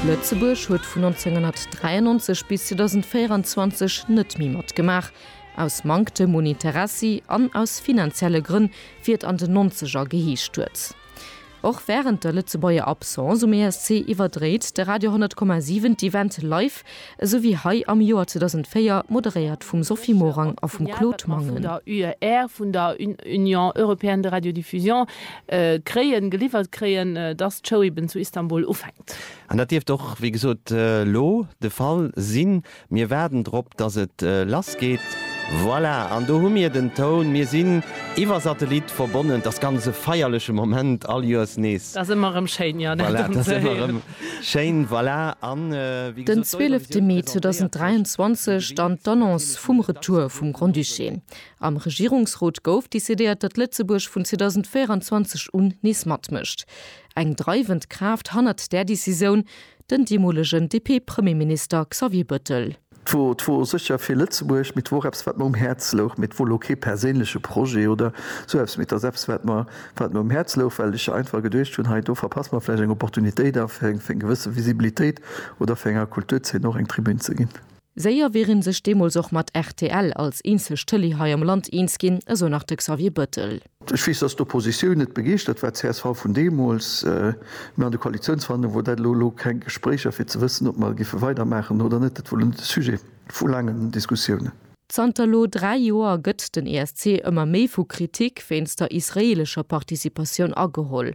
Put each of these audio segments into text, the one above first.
Lëtzebuerg huet vun 1993 bis 2024 net méi matgemaach, aus Manktem un Interessi an aus finanzielle Grënn, wéi et an den Nonzeger geheescht huet. Och wärend der Lëtzebuerger Absence um ESC iwwerdréit de Radio 100,7 d'Event live Esou wéi hei am Joer 2004, moderéiert vum Sophie Morang a vum Claude Mangen. D'Signaldaten, déi mer vun der UER, vun der Union Européenne de Radiodiffusion, kréien, geliwwert kréien, dass d'Show eben zu Istanbul ufänkt. An dat dierft och, wéi gesot, elo de Fall sinn. Mir waarden drop, dass et lassgeet. Voilà, an do hu mir den Toun. Mir sinn iwwer Satellit verbonnen. T'ass ganz e feierleche Moment, all Joers nees. Dat ass ëmmer erëm schéin, jo, dat erëm ze héieren. Schéin, voilà, an wéi gesot, d'Eurovisioun Den 12 Mee presentéiert 2023, dann d'Annonce vum Retour vum Grand-Duché. Am Regierungsrot gouf decidéiert, datt Lëtzebuerg vun 2024 un nees matmécht. Eng dreiwend Kraaft hannert där Decisioun, den deemolegen DP-Premierminister Xavier Bëttel. 't wor, 't wor sécher fir Lëtzebuerg, mee 't wor och eppes, wat mer um Häerz louch, mee 't wor lo kee perséinleche Projet oder sou eppes, mee 't ass eppes, wat mer, wat mer um Häerz louch, well ech einfach geduecht hunn, hei do verpasse mer vläicht eng Opportunitéit a fir eng, fir eng gewësse Visibilitéit oder fir enger Kulturzeen och eng Tribün ze ginn. Séier wier ee sech deemools och mat rtl als eenzeg Tëlee hei am Land eens ginn, esou nach de Xavier Bettel. Ech weess, dass d'Oppositioun net begeeschtert war, csv vun deemools, mä an de Koalitionsverhandlunge wor dat elo elo keng Gespréicher, fir ze wëssen, ob mer géife weidermaachen oder net. Dat wor elo net de Sujet vu laangen Diskussiounen. Zanter elo dräi Joer gëtt den ESC ëmmer méi vu Kritik wéinst der israeelescher Participatioun ageholl.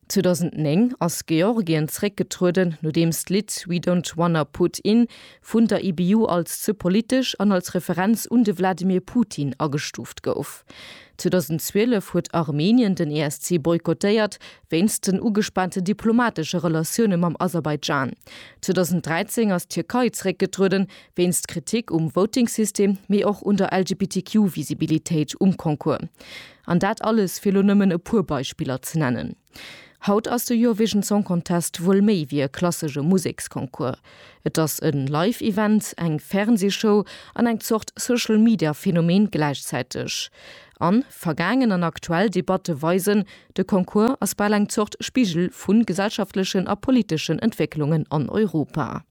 2009 ass Georgien zréckgetrueden, nodeems d'Lidd We Don't Wanna Put In vun der IBU als ze politesch an als Referenz un de Wladimir Putin agestuuft gouf. 2012 huet Armenien den ESC boykottéiert, wéinst den ugespaante diplomatesche Relatioune mam Aserbaidschan. 2013 ass d'Tierkei zréckgetrueden, wéinst Kritik um Voting-System, mee och un der LGBTQ-Visibilitéit um Concours. An dat alles, fir elo nëmmen e puer Beispiller ze nennen. Haut ass de Eurovision Song Contest wuel méi wéi e klassesche Museksconcours. Et ass e Live-Event, eng Fernsee-Show an eng Zort Social-Media-Phänomen gläichzäiteg. An vergaangen an aktuell Debatte weisen, de Concours ass bal eng Zort Spigel vu gesellschaftlechen a politeschen Entwécklungen an Europa.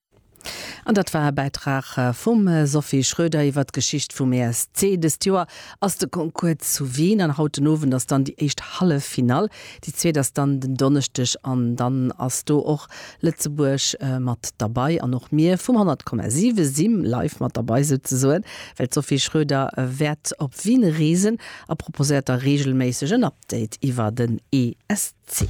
An dat war e Bäitrag vum Sophie Schröder iwwer d'Geschicht vum ESC. Dëst Joer ass de Concours zu Wien an haut den Owend ass dann déi éischt Halleffinall. Déi zweet ass dann den Donneschdeg an dann ass do och Lëtzebuerg mat derbei an och mir vum 100,7 si live mat derbei souzesoen, well d'Sophie Schröder wäert op Wien reesen a proposéiert da reegelméisseg en Update iwwer den ESC.